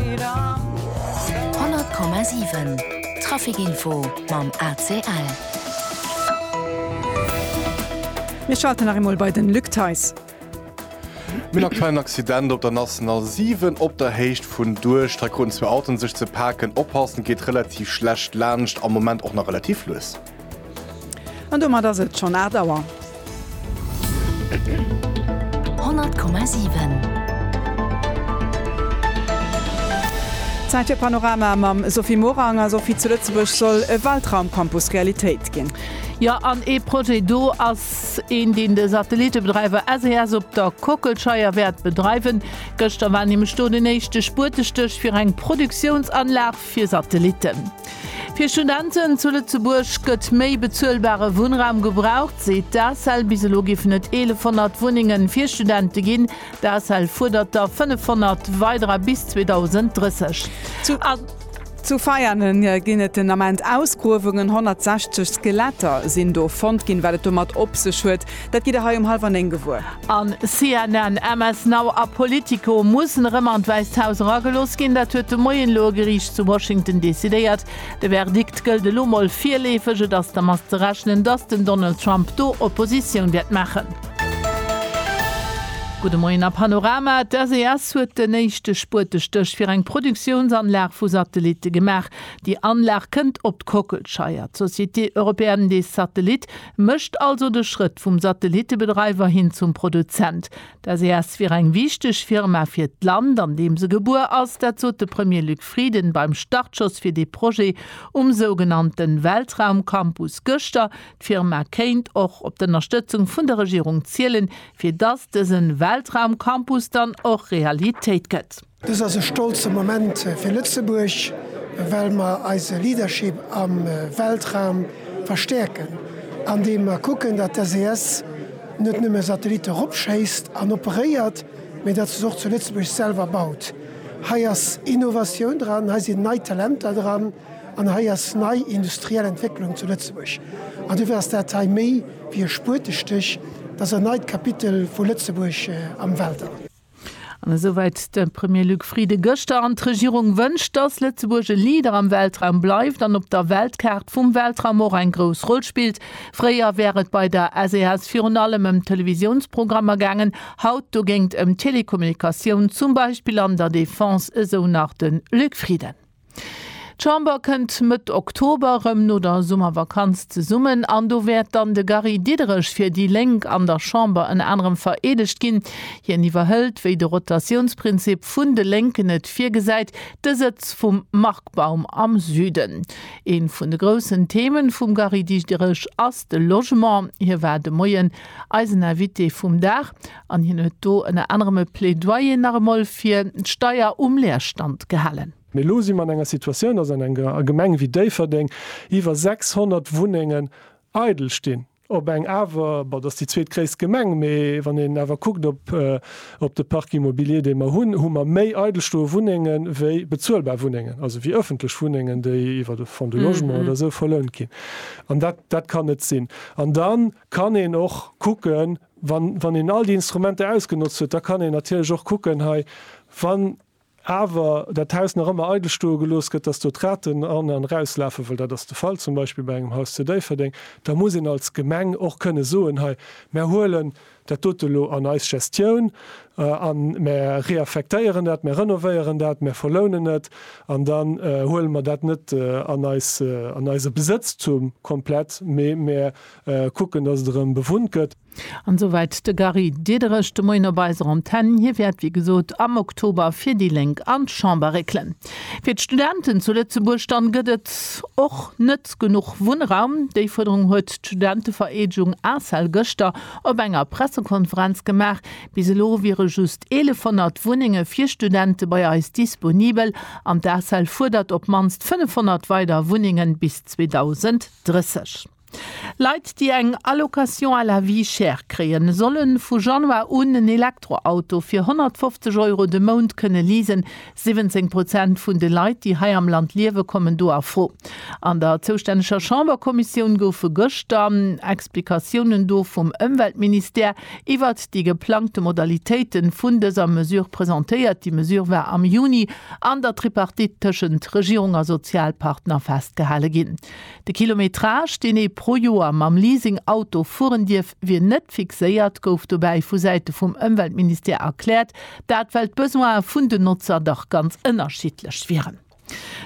100,7 Trafic Info mam ACL. Mir schalten nach eemol bei den Luc Theis. Mir hunn aktuell en Accident op der National 7 op der Héicht vun Duerch. Hei kruten zwee Autoen sech ze paken. Oppassen, et geet relativ schlecht laanscht, am Moment och nach relativ lues. An domat ass et schonn 8 Auer. 100,7. Zäit fir Panorama mam Sophie Morang. A Sophie, zu Lëtzebuerg soll e Weltraumcampus Realitéit ginn. Jo, an ee Projet do ass een, deen de Satellitebedreiwer SES op der Kockelscheier wäert bedreiwen. Gëschter war nämlech do den éischte Spuertestéch fir eng Produktiounsanlag Fir Satellitten. Fir Studenten zu Lëtzebuerg gëtt méi bezuelbare Wunnraum gebraucht, seet d'ACEL. Bis elo géifen et 1.100 Wunnenge fir Studente ginn. D'ACEL fuerdert der 500 weiderer bis 2030. Zu Veianen ginn et den Ament Ausgruewungen. 160 Skeletter sinn do fonnt ginn. Wat et domat op sech huet, Dat gitt der hei um hallwer néng gewuer. An CNN, MS Now a Politico mussen erëm an d'Wäisst Haus eragelooss ginn. Dat huet de Moien elo e Geriicht zu Washington decidéiert. De Verdikt gëllt elo mol virleefeg. Et ass dermat ze rechnen, datt den Donald Trump do Oppositioun wäert maachen. Gudde Moien a Panorama, D'SES huet den éischte Spuetestéch fir eng Produktiounsanlag vu Satellitte gemaach. Déi Anlag kënnt op d'Kockelscheier. D'Société Européenne des Satellites Mécht also de Schrëtt vum Satellittebedreiwer hin zum Produzent. D'SES wier eng wichteg Firma fir d'Land, an deem se gebuer ass. Dat sot de Premier Luc Frieden beim Startschoss fir dee Projet um sougenannte Weltraumcampus gëschter. D'Firma kéint och op d'Ënnerstëtzung vun der Regierung zielen, fir dass dëse Weltraumcampus dann och Realitéit gëtt. Dëst ass e stolze Moment fir Lëtzebuerg, well mer eise Leadership am Weltraum verstäerken, andeem mer kucken, datt d'SES net nëmme Satellitte eropschéisst an operéiert, mee datt se se och zu Lëtzebuerg selwer baut. Hei ass Innovatioun dran, hei sinn nei Talenter dran an hei ass nei industriell Entwécklung zu Lëtzebuerg. An dofir ass dat hei méi wéi e Spuetestich, et ass en neit Kapitel vu Lëtzebuerg am Weltall. An esouwäit de Premier Luc Frieden gëschter. An d'Regierung wënscht, dass Lëtzebuerg e Leader am Weltraum bleift an op der Weltkaart vum Weltraum och eng grouss Roll spillt. Fréier wär et bei der SES virun allem ëm Televisiounsprogrammer gaangen, haut dogéint ëm Telekommunikatioun, zum Beispill an der Defense, esou nach de Luc Frieden. D'Chamber kënnt Mëtt Oktober erëm no der Summervakanz zesummen an do wäert dann de Gary Diderich fir déi Lénk an der Chamber ënner anerem vereedegt ginn. Hien iwwerhëlt, wéi de Rotatiounsprinzip vun de Lénken et virgesäit, de Sëtz vum Marc Baum am Süden. Ee vun de groussen Themen vum Gary Diderich ass de Logement. Hie war de Moien eisen Invité vum Dag. An hien huet do ënner anerem e Plädoyer nach emol fir d'Steier um Leerstand gehalen. Mee elo si mer an enger Situatioun, dass an enger Gemeng wéi Déifferdeng iwwer 600 Wunnengen eidel stinn. Op eng awer, bon, dass déi zweetgréisst Gemeng, mee wann een awer kuckt op de Parc immobilier, dee mer hunn, hu mer méi eidel stoe Wunnenge wéi bezuelbar Wunnengen, also wéi ëffentlech Wunnengen, déi iwwer de Fonds du logement oder esou verlount ginn. An dat kann net sinn. An da kann een och kucken, Wann een all déi Instrumenter ausgenotzt huet, da kann een natierlech och kucken hei, wann awer dat Haus nach ëmmer eidel stoe gelooss gëtt, dass do d'Raten an an erauslafen, well dat ass de Fall zum Beispill bei engem Haus zu Déifferdeng, da muss een als Gemeng och kënne soen, hei, mär huelen dat dote lo an eis Gestioun a mär reaffektéieren dat, mär renovéieren dat, mär verlounen et an dann huele mer dat net an eise Besëtztum komplett, mee mär Kucken, dass et erëm bewunnt gëtt. An souwäit de Gary Diederich de Moien op eiser Antenn. Hie wäert, wéi gesot, am Oktober fir déi Lénk an d'Chamber réckelen. Fir d'Studenten zu Lëtzebuerg dann gëtt et och net genuch Wunnraum. Déi Fuerderung huet d'Studentevereedegung ACEL gëschter op enger Pressekonferenz gemaach. Bis elo wiere just 1.100 Wunnenge fir Studente bei eis disponibel an d'ACEL fuerdert op d'mannst 500 weider Wunnenge bis 2030. Leit, déi eng Allocation à la vie chère kréien, solle vu Januar un en Elektroauto fir 150 Euro de Mount kënne leasen. 17 Prozent vun de Leit, déi hei am Land liewen, kommen do a Fro. An der zoustänneger Chamberkommissioun goufe gëschter Explikatiounen do vum Ëmweltministère iwwert déi geplangte Modalitéite vun dëser Mesure presentéiert. Déi Mesure war am Juni an der Tripartite tëschent Regierung a Sozialpartner festgehale ginn. De Kilometrage, deen ee pro Joer mam Leasing Auto fueren dierf, wier net fixéiert, gouf dobäi vu Säite vum Ëmweltministère erkläert. Dat well d'Besoine vun den Notzer dach ganz ënnerschiddlech wieren.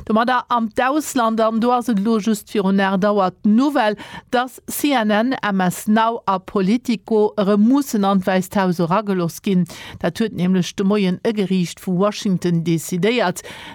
Domadder an d'Ausland. An do ass et elo just virun 8 Auer d'Nouvelle, datt CNN, MS Now a Politico erëm mussen an d'Wäisst Haus erageloss ginn. Dat huet nämlech de Moien e Geriicht vu Washington decidéiert.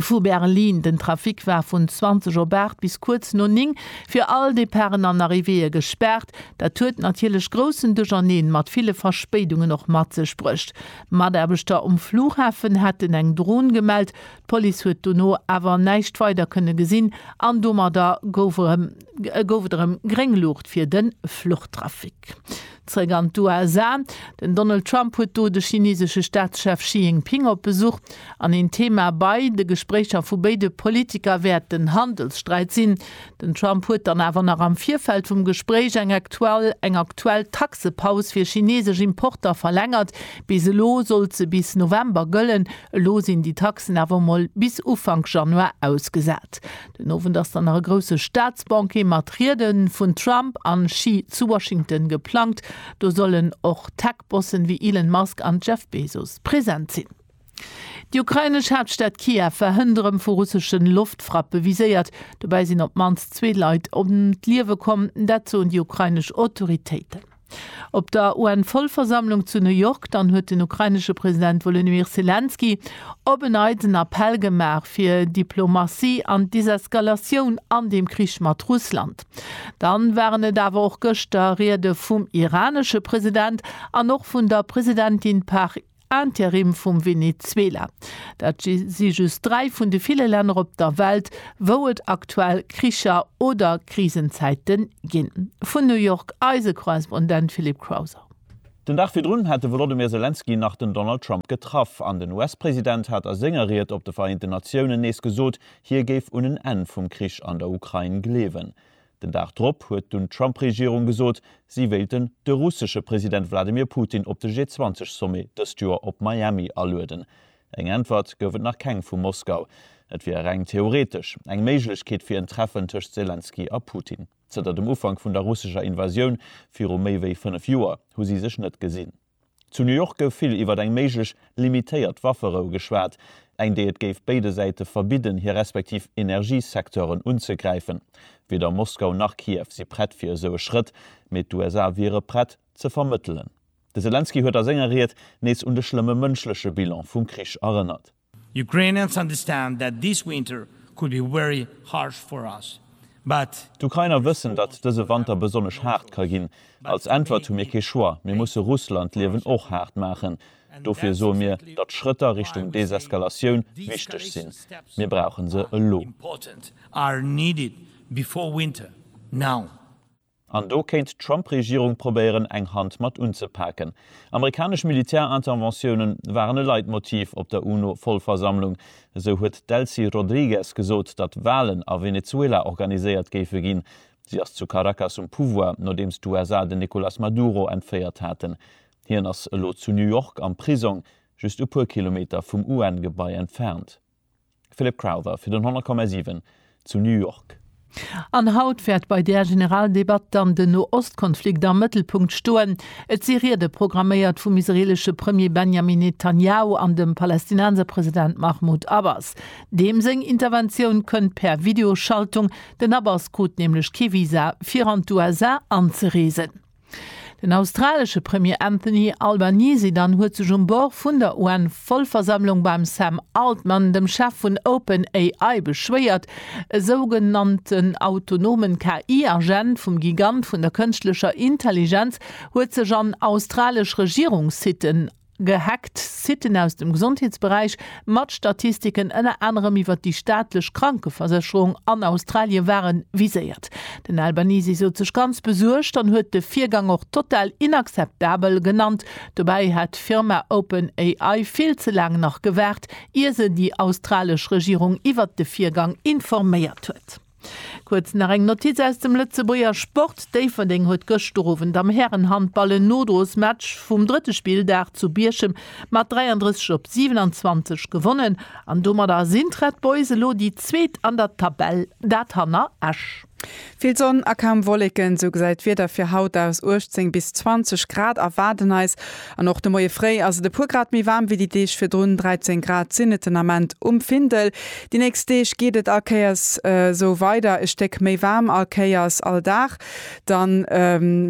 Vu Berlin. Den Trafic war vun 20 op 8 bis kuerz no 9 fir all Departen an Arrivéeë gespaart. Dat huet natierlech groussen Ducherneen mat ville Verspéidungen och mat sech bruecht. Mataarbechter um Flughafen hätten eng Dron gemellt. D'Police huet dono awer näischt weider kënne gesinn an domadder gouf et erëm gréng Luucht fir de Fluchtrafic. Zréck an d'USA, Den Donald Trump huet do de chinesesche Staatschef Xi Jinping op Besuch an een Thema bei de Gespréicher vu béide Politiker wäert den Handelssträit sinn. Den Trump huet dann awer nach am Virfeld vum Gespréich eng eng aktuell Taxepaus fir chinesesch Importer verlängert. Bis elo sollt se bis November gëllen, elo sinn déi Taxen awer mol bis Ufank Januar ausgesat. Den Owend ass dann nach e grousse Staatsbanquet mat Riede vun Trump a Xi zu Washington geplangt. Do sollen och Tech-Bossen wéi Elon Musk an Jeff Bezos present sinn. Déi ukrainesch Haaptstad Kiew war hënt erëm vu russesche Loftfrappe viséiert. Dobäi sinn op d'mannst zwee Leit ëm d'Liewe komm, dat soen déi ukrainesch Autoritéiten. Op der UN-Vollversammlung zu New York dann huet den ukrainesche President Wolodymyr Selenskyj op en Neits en Appell gemaach fir Diplomatie an Deseskalatioun an deem Krich mat Russland. Dann waren et awer och gëschter Riede vum iranesche President an och vun der Presidentin Par Interim vum Venezuela. Dat si just dräi vun de ville Länner op der Welt, wou et aktuell Kricher oder Krisenzäite ginn. Vun New York eise Korrespondent Philippe Crowther. Den Dag virdrun hat de Wolodymyr Selenskyj nach den Donald Trump getraff an den US-President hat a senger Ried op de Vereenten Natiounen nees gesot, hie géif un en Enn vum Krich an der Ukrain gleewen. Den Dag drop huet dunn d'Trump-Regierung gesot, si wéilten de russesche President Wladimir Putin op de G20-Sommet dëst Joer op Miami alueden. Eng Äntwert gouf et nach keng vu Moskau. Et wier reng theoretesch eng Méiglechkeet fir en Treffen tëscht Selenskyj a Putin. Zënter dem Ufank vun der russescher Invasioun viru méi wéi fënnef Joer hu si sech net gesinn. Zu New York gouf vill iwwert eng méiglech limitéiert Wafferou geschwat, eng déi et géif béide Säite verbidden hir respektiv Energiesecteuren unzegräifen. Weder Moskau nach Kiew si prett fir esou e Schrëtt, mee d'USA wiere prett ze vermëttelen. De Selenskyj huet a senger Ried nees un de schlëmme mënschleche Bilan vum Krich erënnert. Ukrainians understand that this winter could be very harsh for us, but. D'Ukrainer wëssen, datt dëse Wanter besonnesch haart ka ginn. Als Äntwert hu mir kee Choix, mir musse Russland d'Liewen och haart maachen. Dofir soe mir, datt Schrëtter Richtung Deseskalatioun wichteg sinn. Mir brauche se elo. An do kéint d'Trump-Regierung probéieren, eng Hand mat unzepaken. Amerikanesch Militärinterventiounen waren e Leitmotiv op der UNO-Vollversammlung. Esou huet d'Delcy Rodrigues gesot, datt Walen a Venezuela organiséiert géife ginn. Si ass zu Caracas um Pouvoir, nodeems d'USA den Nicolas Maduro entféiert haten. Hien ass elo zu New York am Prisong, just e puer Kilometer vum UN-Gebai entfernt. Philip Crowther fir den 100,7 zu New York. An haut wäert bei där Generaldebatt dann den No-Ost-Konflikt am Mëttelpunkt stoen. Et si Riede programméiert vum israeelesche Premier Benjamin Netanjahu an dem Palästinenser President Mahmoud Abbas. Deem seng Interventioun kënnt per Videoschaltung, den Abbas krut nämlech kee Visa fir an d'USA anzereesen. Den australesche Premier Anthony Albanese dann huet sech um Bord vun der UN-Vollversammlung beim Sam Altman, dem Chef vun Open AI, beschwéiert. E sougenannten autonomen KI-Agent vum Gigant vun der kënschtlecher Intelligenz huet sech an australesch Regierungssitten Gehackt, Siten aus dem Gesondheetsberäich mat Statistiken ënner anerem iwwer déi staatlech Krankeversécherung an Australien ware viséiert. Den Albanese sot sech ganz besuergt an huet de Virgang och total inakzeptabel genannt. Dobäi hätt d'Firma Open AI vill ze laang nach gewaart, ier se déi australesch Regierung iwwert de Virgang informéiert huet. Kuerz nach eng Notiz aus dem Lëtzebuerger Sport, Déifferdeng huet gëscht Owend am Härenhandball en Nodrosmatch vum drëtte Spilldag zu Bierchem mat 33 op 27 gewonnen an domadder sinn d'Red Boys elo déi zweet an der Tabell, dat hanner Esch. Vill Sonn a kaum Wolleken, sou gesäit d'Wieder fir haut aus. 18 bis 20 Grad erwaarden eis. An och de Moie fréi ass et e puer Grad méi waarm wéi déi Deeg virdrun, 13 Grad sinn et den Ament um Findel. Déi nächst Deeg geet et allkéiers esou weider, e Stéck méi waarm allkéiers all Dag, dann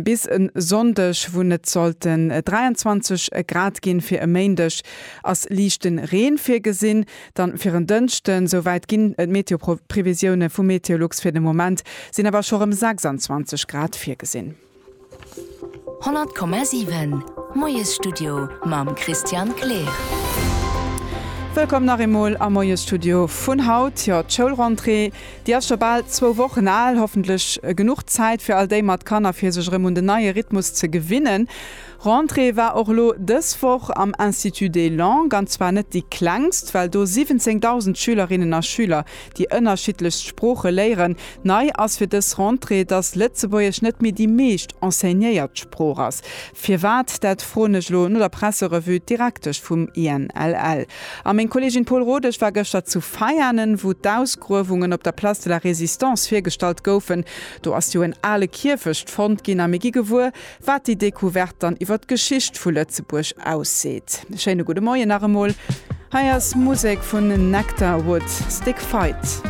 bis e Sonndeg wou et sollte 23 Grad ginn. Fir e Méindeg ass liichte Reen virgesinn, dann fir en Dënschden. Esou wäit ginn d'Meteoprevisioune vu Meteolux, fir de Moment sinn awer scho rëm 26 Grad virgesinn. 100,7 Moiesstudio mam Christian Kleer. Wëllkomm nach eemol am Moiesstudio vun haut. Jo, d'Schoulrentrée, déi ass scho bal zwou Wochen al. Hoffentlech genuch Zäit fir all déi mat Kanner, fir sech erëm un den neie Rhythmus ze gewinnen. Rentrée war och lo dës Woch am Institut des Langues, an zwar net déi klengst, well do 17.000 Schülerinnen a Schüler déi ënnerschiddlechst Sprooche léieren. Nei ass fir dës Rentrée, datt Lëtzebuergesch net méi déi meescht enseignéiert Sprooch ass. Firwat, dat froen ech lo no der Presserevue d'Direktesch vum INLL. A meng Kollegin Paul Rodesch war gëschter zu Veianen, wou d'Ausgruewungen op der Place de la Résistance virgestallt goufen. Do ass jo en ale Kierfecht fonnt ginn a mir gi gewuer, Wat déi Decouverte dann iwwer d'Geschicht vu Lëtzebuerg ausseet. Schéine gudde Moien nach emol. Hei ass Musek vun Nectar Wood, Stick Fight.